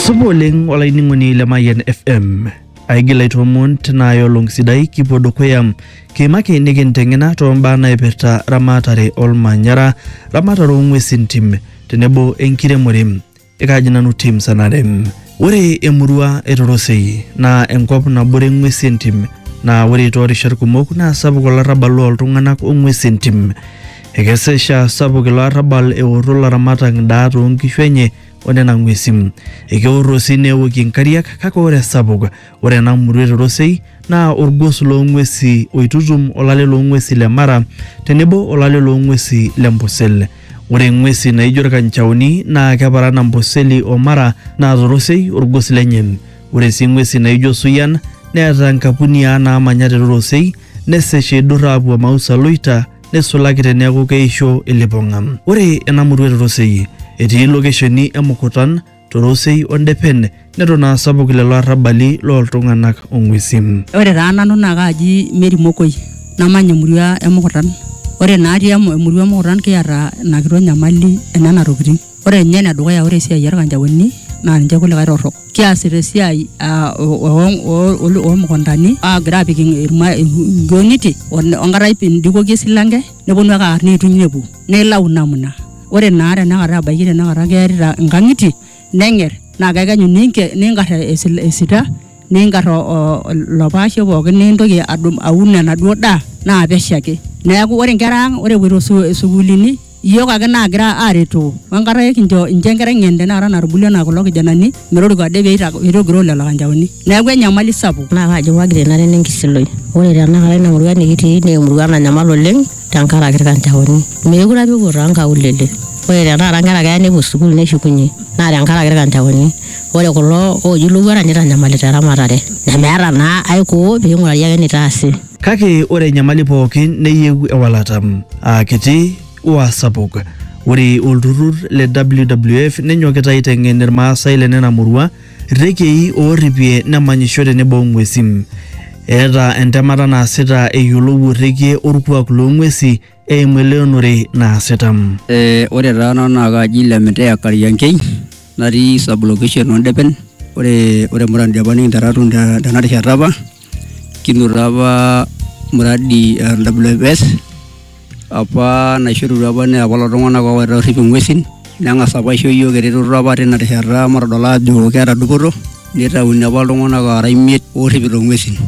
Supa oleng olainining'oni le Mayian FM. Aigil aitoomon tina olong sidai kipuo dukuya kiimaki nikinteng'ena too mbaa naipirta ramatare olmanyara, ramatare oo ng'uesin tim tenebo enkiremore. Ekaaji nanu tim sanare. Ore emurua e Torosei naa enkop nabore ng'uesi entim naa ore too rishat kumok naa sapuk olarrabal loo ltung'anak o ng'uesi entim. Ekesa esha sapuk ilo arrabal eorro laramatak ndaa too nkishu enye o nena ng'uesin. Ekeorro sii neokie nkariak kake ore esapuk ore ena murua e Torosei naa olgos loo ng'uesi oitutum olale loo ng'uesi le Mara tenebo olale loo ng'uesi le Mpusil. Ore ng'uesi naaijo ilkanchaoni naa keparan Amboseli o Mara naa Torosei olgos lenye. Ore sii ng'uesi naaijo Suyian neeta nkapuniaa naamanya te Torosei nesesh eidurr aapuo Mausa Loita neisulaki teneaku keisho ilipong'a. Ore ena murua te Rosei etii lokesheni e Mukutan, Torosei o Ndepen neton aa sapuk lelo arrabali loo ltung'ana o ng'uesi. Ore taa nanu naa kaaji Mary Mokoi namanya emurua e Mukutan. Ore natii emurua e Mukutan kiata ina kitok nyamali e nena tokitin. Ore ninye ene dukuya ore esiai orkanjaoni naa ninche kulikae torrok. Kiasita esiai aa oo mukuntani aagira aapik inkioniti enkata indikoki esilanke nepwonu ake aar neituny nepwo. Naa ilau namna. Ore naa tenakata ebaiki tenakata kearita inkang'itie neng'er naa kekenyu niingar esita niingar ilo paashe pookin nintoki aun enaduo daa naa pesho ake. Neeku ore inkera ang ore epwoito isukuulini Iyiook ake naagira aaretoo o enkata ekincho inchoo enkerai ng'en tenakata natubulua anaa kulo kijanani metoriko ade pee eitogiroo lelo kanjaoni. Neeku enyamali sapuk. Naa kaji wagri enare nenkisiloi? Ore tenakata ina murua nikitii naa emurua nanyamal oleng tenkaraki ilkanjaoni. Meekure apa epuo too nkaulele. Ore tenakata inkera keya nepuo sukuul neshukunye naa tenkaraki ilkanjaoni. Ore kulo ooji ilowuarak neitanyamalita eramatare nemeeta naa aikoo pee eing'urari ake eneitaasi. Kake ore enyamali pookin neyieu ewalata, aa kiti o aa sapuk. Ore olturrur le WWF nenyokita aiteng'en Ilmaasai le nena murua rrekiei oorripie nemanyisho tenebo o ng'uesi. Eeta entemata naasita eyiolou orrekie olkuak loo ng'uesi eimu eleonore naasita. Eh, ore taa nanu naa kaaji Lemiteya Kariankei natii sub location oo Ndepen. Ore ore muradi apa nikinteru atum te tena rishata apa kinoto apa muradi eh WFS apa naishorutua apa naa kulo tung'anak oowaita oorrip ing'uesin neng'as apa aisho iyiok eretoto apa tina rishata matodol aajo keeta dupoto nitauni apa iltung'anak aara imiet oorripito ing'uesin.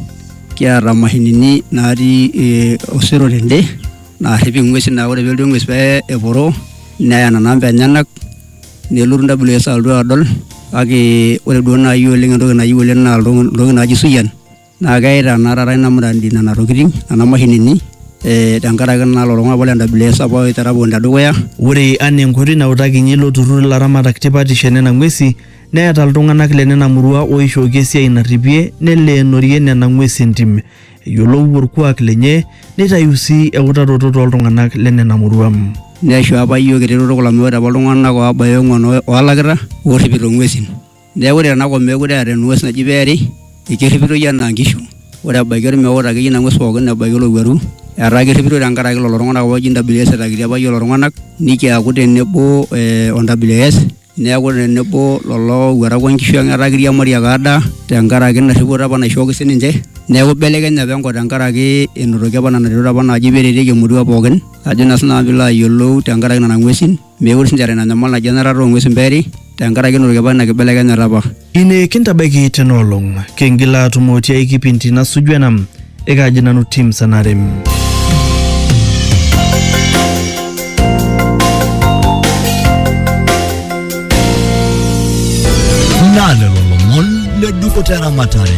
kiata mashinini natii eh, osero tende naarrip ing'uesin naa ore pelotu eng'ues pee eporo neya nena amba enyenak nelotu WS alotu adol kake ore duo naaji oleng entoki nayieu oleng naa ilto- iltokitin naaji suyian naa keita naa taata ina muradi nena tokitin nena mashinini eh, tenkaraki naa lelo tung'anak apa le WS apa oitera pookin tedukuya ore anaa enkoitoi nautakinyie ilo turrur ilaramatak tipatisho enena ng'uesi Neeta iltung'anak le nena murua ooishooki esiai narripie neleenorie nena ng'uesi entim. Eyiolou olkuak lenye neitayu sii eutaroto too ltung'anak le nena murua. Neisho apa iyiook eretoto kulo amu ore apa iltung'anak oobaya ong'uan oolakita oorripito ng'uesin. Neeku ore tena kop meekure eeta eng'ues naji peeri, ekerripitoi enaa nkishu. Ore ebaiki olmeut akeyie ina ng'ues pooki ebaiki olowuaru etaa kerripitoi tenkaraki lelo tung'anak apa ooji NWS etaakitia apa iyiook lelo tung'anak nikiaku tenebo o NWS. neaku tenebo lolo owuarak onkishu ang etaa kiriamari ake adaa tenkaraki ina rripoto apa naishooki sininche neaku ibelekenye apa enkop tenkaraki enotoki apa nena retot apa naaji peretieki emurua pookin ajo naa sinanu piilo ayiolou tenkaraki nana ng'uesin mekure sinche eeta ina nyamal naji enarata ong'uesin peeri tenkaraki enotoki apa ina kibelekenyata apa. Ine kintabaiki tena olong, kingila atumo tiai kipindi nasuju ena, ekaaji nanu Tim Sanare. Naa lelo lomon le dupoto eramatare.